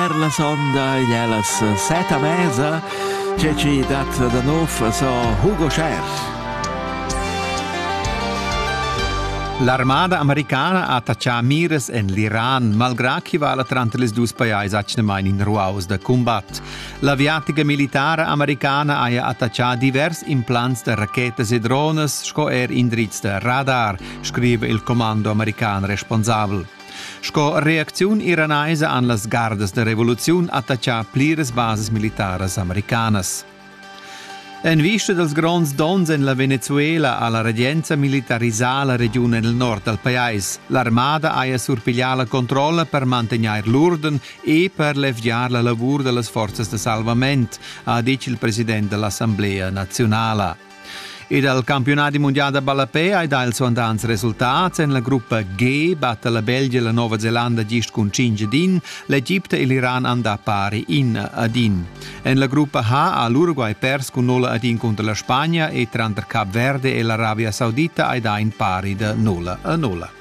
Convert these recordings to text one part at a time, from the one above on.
Per la sonda igl è las set a mesa, tge che dat da nov so Hugo Scher. L'armada americana ha attaccà mires en l'Iran, malgrà ch'i vala tranter les dus pajais atgnamain in ruaus da cumbat. L'aviatica militara americana haja attaccà divers implants da rachetas e drones sco er indrizs da radar, scrive il commando american responsabel. Sco reacziun iranaisa han las gardas da revoluziun attaccà pliras basas militaras americanas. En vista dals gronds donns en la Venezuela ha la regenza militarisà la regiun en il nord dal pajais. L'armada haja surpiglià la controlla per mantegnair l'urden e per levgiar la lavur da las forzas da salvament, ha ditg il president da l'Assamblea naziunala. E dal campiunadi mundial da ballapè hai dà ils suandants resultats. En la gruppa G batta la Belgia la Nova Zelanda gist cun 5 ad 1, l'Egipte e l'Iran han dà pari 1 ad 1. En la gruppa H ha l'Uruguay pers cun 0 ad 1 contro la Spagna e tranter Cap Verde e l'Arabia Saudita hai dà in pari da 0 a 0.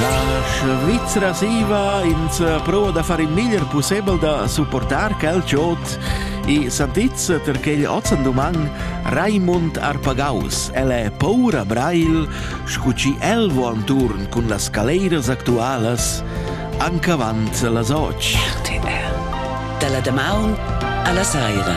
La Svizra siva ins prova da far il meglier pussebel da supportar quel giot e santizza ter quegl ozzen duman Raimund Arpagaus. El è paura brail, scu chi el vo anturn cun las caleiras actualas ancavant las och. RTL. Dalla damaun alla saira.